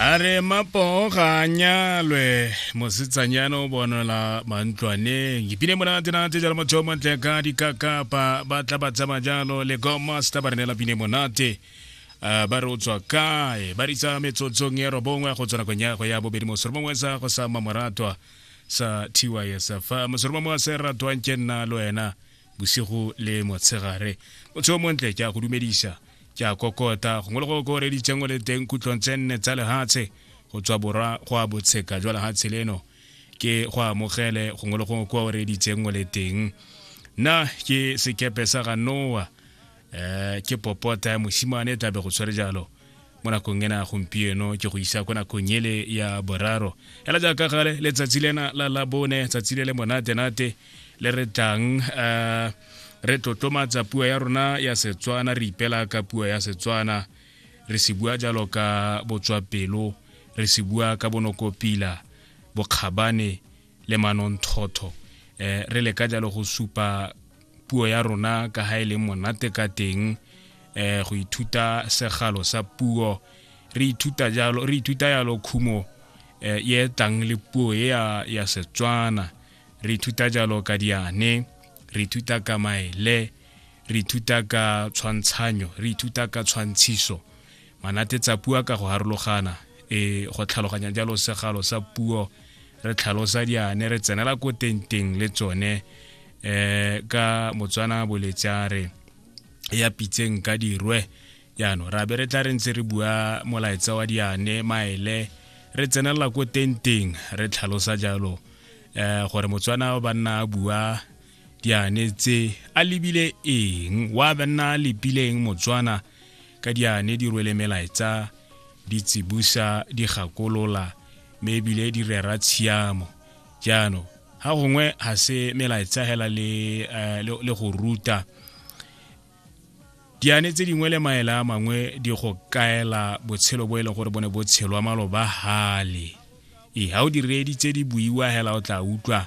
a re mapogo ga a nyalwe mosetsanyana o bonela mantlwaneng ipine monate nate jalo motho o montle ka dikakapa ba tla ba tsama jalo le gomaster ba re neela pine monate Uh, ba re o tswa kae ba ritsa metsotsong ya robongwe go tswa nakong ya go ya bobedi mosoro mongwe sa go sa mamoratwa sa tysf mosoro mongwe wa se ratwang ke nna le wena bosigo le motshegare motho o montle ke a go dumedisa Ke a kokota, gongwe le go kooreditseng o le teng kutlong tse nne tsa lehatshe go tswa borwa go a botsheka jwa lehatshe leno ke go amogele gongwe le go kooreditseng o le teng nna ke sekepe sa ga noa um ke popota ya mosimane tabe go tshwere jalo mo nakong ena gompieno ke go isa ko nakong ele ya boraro ela jaaka gale letsatsi lena la labone tsatsi le le monate-nate le re tlang um re tlotlomatsa puo ya rona ya setswana re ipela ka puo ya setswana re se bua jalo ka botswapelo re se bua ka bonokopila bokgabane le manonthotho um eh, re leka jalo go supa puo ya rona ka ga e leng monate ka teng um go ithuta segalo sa puo re ithuta jalo re ithuta yalo khumo um e tlang le puo e ya setswana re ithuta jalo ka diane re ithuta ka maele re ithuta ka tshwantshanyo re ithuta ka tshwantshiso manate tsa pua ka go harologana e go tlhaloganya jalo segalo sa puo re tlhalosa diane re tsenela ko tenteng le tsone um ka motswana boletsa re ya pitseng ka dirwe jaanong ra be re tla re ntse re bua molaetsa wa diane maele re tsenelela ko tenteng re tlhalosa jalo eh gore motswana ba nna a bua diane tse a lebile eng wa ba nna a lebileng motswana ka diane di rwele melaetsa di tsibusa di gakolola mme ebile di rera tshiamo jaanong ga gongwe ga se melaetsa hela le, uh, le, le go ruta diane tse dingwe le maele a mangwe di go kaela botshelo bo e leng gore bo ne bo tshelwa maloba hale ee ga o di reeditse di buiwa hela o tla utlwa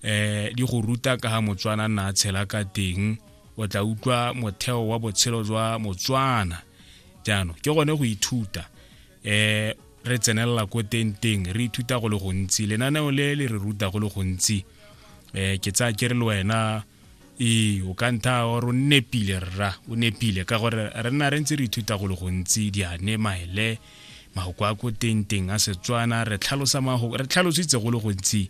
um di go ruta ka ga motswana nna a tshela ka teng o tla utlwa motheo wa botshelo jwa motswana jaanong ke gone go ithuta um re tsenelela ko teng teng re ithuta go le gontsi lenaneo le le re ruta go le gontsi um ke tsaya ke re le wena ee o ka ntha gore o nepile rra o nepile ka gore re nna re ntse re ithuta go le gontsi diane maele mahoko a ko tengteng a setswana re tlhalositse go le gontsi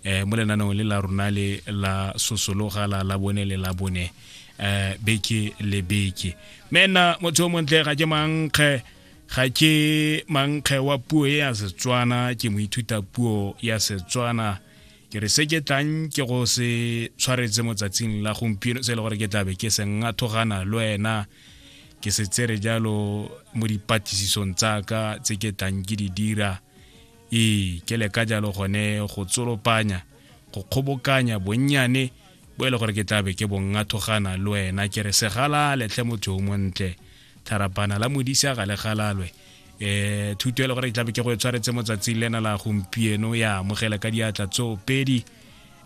um mo lenanong le la rona le la sosologa la la bone le la bone um beke le beke mme nna motho o montle ga ke mankge ga ke mankge wa puo e ya setswana ke moithuta puo ya setswana ke re se ke tlang ke go se tshwaretse motsatsing la gompieno se e le gore ke tlabe ke se ngathogana le wena ke se tsere jalo mo dipatlisisong tsaka tse ke tlang ke di dira ee ke leka jalo gone go tsolopanya go kgobokanya bonnyane bo e le gore ke tlabe ke bongathogana le wena ke re segala letlhe motho o montle tharapana la modisa ga le galalwe eh thuto e le gore e tlabe ke go e tshwaretse mo tsatsing lena la gompieno ya amogela ka diatla tso pedi